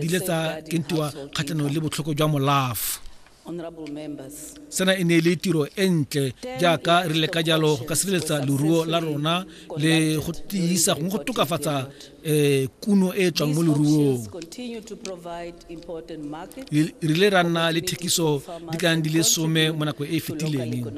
di le tsa kentiwa kgatlhanong le botlhoko jwa molafo sena e ne e le tiro e ntle jaaka re leka jalo go ka sireletsa leruo la rona le go tiisa gongwe go tokafatsa um kuno e e tswang mo leruong re ile ra nna le thekiso di ka di le some mo nako e e fetileng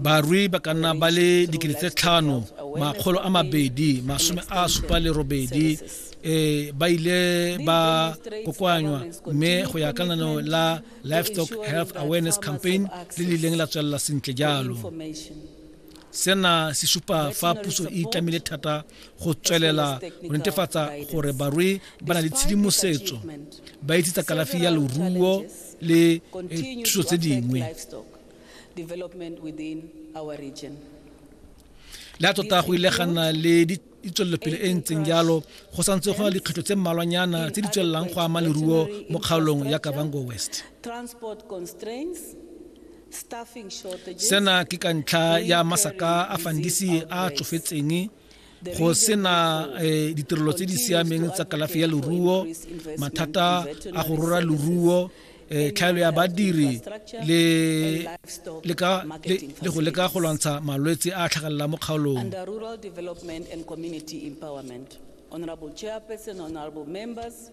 Barui ba ka nna ba le dikete tse tlhano makgolo a mabedi masome a supa le robedi eh, ba ile ba kokoanywa mme go ya ka nano la livestock health awareness campaign le le ileng la tswelela sentle jalo sena se supa fa puso e itlamile thata go tswelela go netefatsa gore barui ba na le tshedimosetso ba itse tsa kalafi ya loruo le eh, thuso tse dingwe le a tota go ile ga nna le ditswelelopele e ntseng jalo go santse go na le dikgwetlho tse mmalwanyana tse di tswelelang go ama leruo mo kgaolong ya kabango west sena ke ka ntlha ya masaka a fandisi a tsofetseng go sena eh, ditirelo tse di siameng tsa kalafi ya leruo mathata a go rora leruo eh, tlhaelo ya badiri le go leka go lwantsha malwetse a tlhagelelang mo kgaolong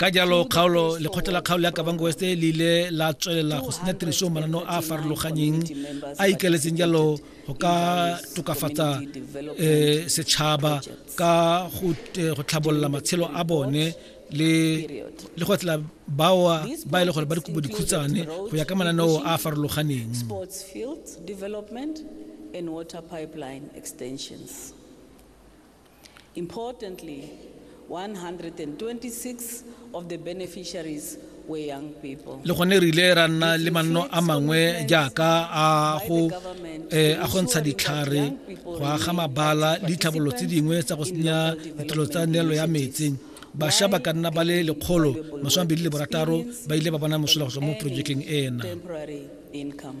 ka jalo kgaolo lekgotla la kgaolo ya kabango west le ile la tswelela go senya tiriso manano a a farologanyeng a ikaletseng jalo go ka tokafatsa um setšhaba ka go eh, tlhabolola matshelo a bone le le go tla baoa ba e le gore ba dikobo dikhutsane go ya ka mananeo a a farologaneng and water pipeline extensions. Importantly, 126 of the beneficiaries were young people. le gone re ile ra nna le manno a mangwe jaaka a go eh, a go ntsha ditlhare go aga mabala le ditlhabololo tse dingwe tsa go senya ditirelo tsa neelo ya metsi basha ba ka nna ba le lekgolo masome a mabedi le borataro ba ile ba bona mosola go tswa mo projekeng ena Temporary income.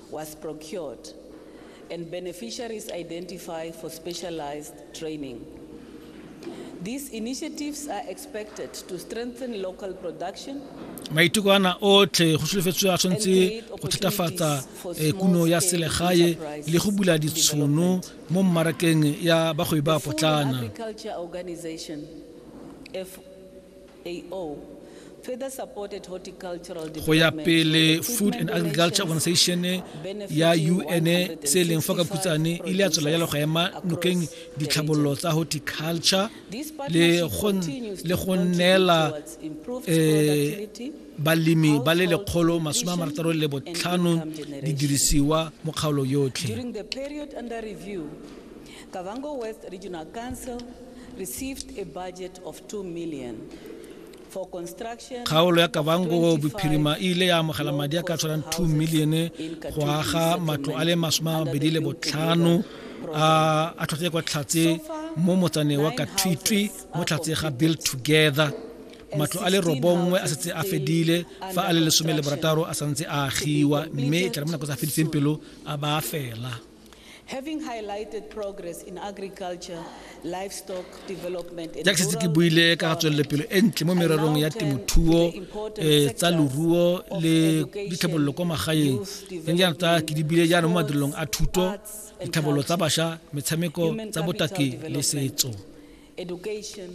was procured and beneficiaries identified for specialized training. These initiatives are expected to strengthen local production maiteko ana otlhe go solofetswe a tshwanetse go thatafatsa eh, kuno ya selegae le go bula ditshono mo mmarakeng ya bagwebi ba potlana go ya pele food and agriculture organization ya un se e leng fa ka phutsane e ile ya tswela jalo go ema nokeng ditlhabololo tsa horticulture le go neela eh, balemi ba le lekgolo masome a marataro le botlhano didirisiwa mo kgaolo yotlhe Kgaolo ya Kavango Bophirima e ile ya amogela madi a ka tshwanang 2 milione go aga matlo a le masome a mabedi le botlhano a a tlhotlhe kwa tlhatse mo motsane wa kathwitwi mo tlhatse ga build together matlo a le robongwe a setse a fedile fa a le lesome le borataro a santse a agiwa mme e tla re mo nako tsa fediseng pelo a ba fela jaaka setse ke buile ka ga tswelelopelo e ntle mo mererong ya temothuo um tsa loruo le ditlhabololo kwa magaeng le jaana tsa ke di bile jaana mo madirelong a thuto ditlhabololo tsa bašwa metshameko tsa botaki le setso education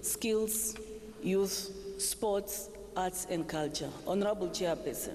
skills youth sports arts and culture honorable chairperson